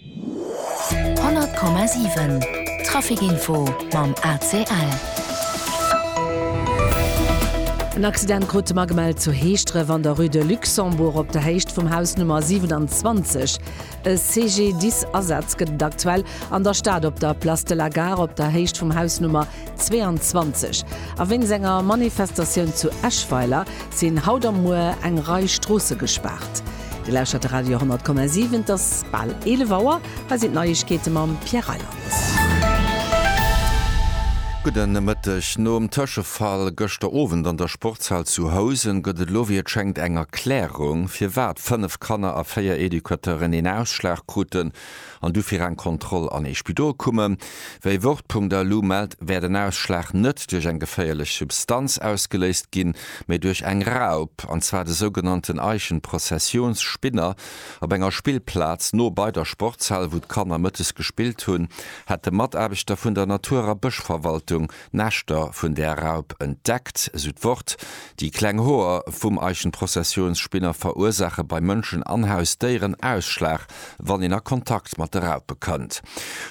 100,7 Trafic Info mam ACL. En Accident krut de magemellt zu Heeschdref an der Rue de Luxembourg op der Héicht vum Haus Nummer 27. E CGDIS Asaz gëtt et aktuell an der Stad op der Place de la Gare op der Héicht vum Haus Nummer 22. A wéinst enger Manifestatioun zu Eschweiler sinn haut a muer eng Rei Stroosse gespaart. Dir lauschtert de Radio 10,7, et ass bal 11 Auer. Hei sinn d'Neiegkeete mam Pierre Reyland. Gudde Mëtteg. Nom Tëschefall gëschter Owend an der Sportshal zu Housen gëtt et elo wéi et schéngt eng Erklärung, firwat 5 Kanner a 4 Educateuren een Ausschlag kruten. an du fir eng Kontroll an ee Spidol kummen. Wéi Wort.de elo mellt, wär den Ausschlag net duerch eng geféierlech Substanz ausgeléist ginn, mee duerch eng Raup, an zwar de sougenannten Eichenprozessionsspinner. Op enger Spillplaz no bei der Sportshal, wou d'Kanner mëttes gespillt hunn, hätte Mataarbechter vun der Natur a Bëschverwaltung Näschter vun där Raup entdeckt, sou d'Wort. Déi kleng Hoer vum Eichenprozessionsspinner verursaache bei Mënschen an Hausdéieren Ausschlag, wann een a Kontakt mat de Raupe kënnt.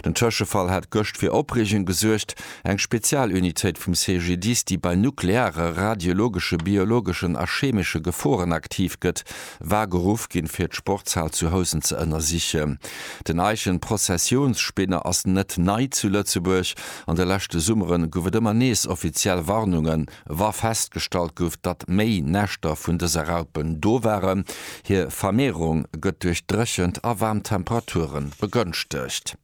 Den Tëschefall hat gëscht fir Opreegung gesuergt. Eng Spezialunitéit vum CGDIS, déi bei nukleare, radiologesche, biologeschen a chemesche Geforen aktiv gëtt, war geruff ginn, fir d'Sportshal zu Housen ze ënnersichen. Den Eichenprozessionsspinner ass net nei zu Lëtzebuerg. An de leschte Summere gouf et ëmmer nees offiziell Warnungen, wa festgestallt gouf, datt méi Näschter vun dëse Raupen do waren. Hir Vermehrung gëtt duerch dréchent a waarm Temperature begënschtegt.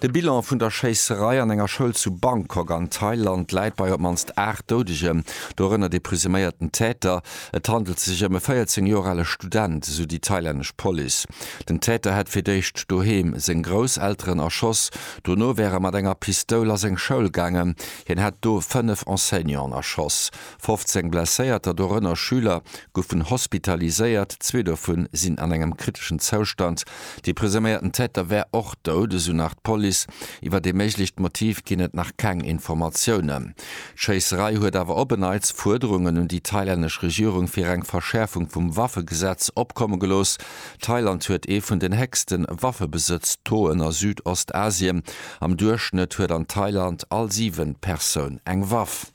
De Bilan vun der Schéisserei an enger Schoul zu Bangkok an Thailand läit bei op d'mannst 8 Doudegem, dorënner de presuméierten Täter. Et handelt sech ëm e 14 Joer ale Student, esou déi thailännesch Police. Den Täter hätt fir d'éischt doheem seng Grousselteren erschoss, Dono wär e mat enger Pistoul a seng Schoul gaangen. Hien hätt do fënnef Enseignanten erschoss. 15 Blesséierter, dorënner Schüler, goufen hospitaliséiert, zwee dovu sinn an engem kriteschen Zoustand. De presuméierten Täter wär och dout, esou nach d'Police. Iwwert ee méiglecht Motiv ginn et nach keng Informatiounen. D'Schéisserei huet awer op en Neits Fuerderungen un déi thailännesch Regierung fir eng Verschäerfung vum Waffegesetz opkomme gelooss. Thailand huet ee vun den héchsten Waffebesëtz-Tauxen a Südostasien. Am Duerchschnëtt huet an Thailand all siwent Persoun eng Waff.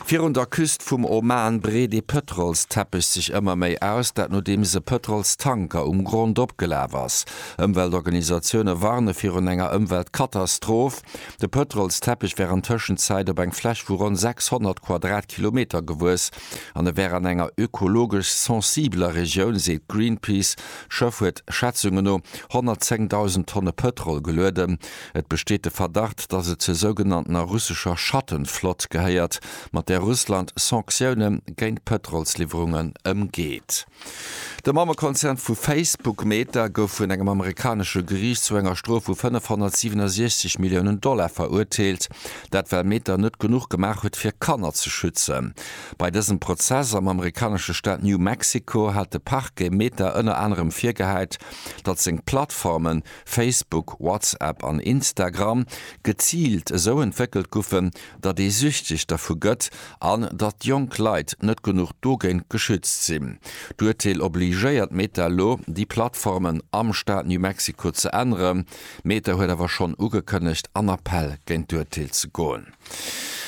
Virun der Küst vum Oman breet ee Pëtrolsteppech sech ëmmer méi aus, dat nodeems e Pëtrolstanker um Grond opgelaf ass. Ëmweltorganisatioune warne virun enger Ëmweltkatastroph. De Pëtrolsteppech wär an Tëschenzäit op eng Fläch vu ronn 600 Quadratkilometer gewuess. an e wär an enger ökologesch sensibeler Regioun, seet Greenpeace. D'Schëff huet Schätzunge no 110.000 Tonne Pëtrol gelueden. Et besteet de Verdacht, datt et zur sougenanntener russescher Schattenflott gehéiert, mat där Russland Sanktioune géint Pëtrolsliwwerungen ëmgeet. De Mammekonzern vu Facebook, Meta, gouf vun engem amerikanesche Geriicht zu enger Strof vu 567 Milliounen Dollar verurteelt. Dat well Meta net genuch gemaach huet fir Kanner ze schützen. Bei dësem Prozess am amerikanesche Staat New Mexico hat de Parquet Meta ënner anerem virgehäit, datt seng Plattformen, Facebook, WhatsApp an Instagram, geziilt esou entwéckelt goufen, datt ee süchteg dervu gëtt an datt jonk Leit net genuch dogéint geschützt sinn. D'Urteel obligéiert Meta elo, déi Plattformen am Staat New Mexico ze änneren. Meta huet awer schonn ugekënnegt, an Appell géint d'Urteel ze goen.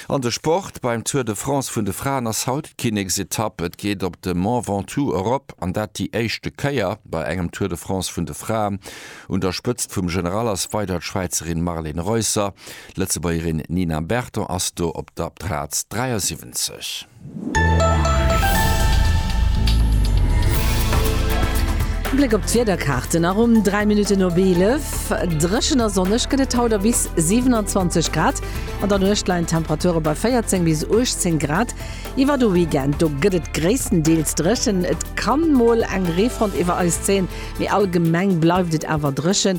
An de Sport, Beim Tour de France vun de Fraen ass haut d'Kinneksetapp. Et geet op de Mont Ventoux erop, an dat déi éischte Kéier bei engem Tour de France vun de Fraen. Un der Spëtzt vum General ass weider d'Schwäizerin Marlen Reusser. D'Lëtzebuergerin Nina Berton ass do op der Plaz 73. Bléck op d'Wiederkaarten a ronn 3 Minutten op 11. Dréchen a sonneg gëtt et haut a bis 27 Grad. An der Nuecht leien d'Temperature bei 14 bis 18 Grad. Iwwer de Weekend do gëtt et gréisstendeels dréchen, et kann mol eng Reefront iwwer eis zéien, mee allgemeng bleift et awer dréchen.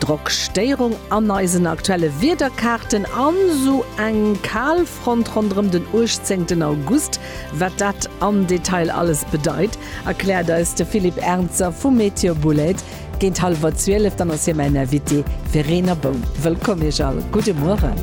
Drockstéirung an eisen aktuelle Wiederkaarten an esou eng Kalfront ronderëm den 18 August. Wat dat am Detail alles bedeit, erkläert eis de Philippe Ernzer vu Météo Boulaide géint hallwer 12. Dann ass hie mäin Invité. Verena Boum, wëllkomm Iech all. Gudde Mueren.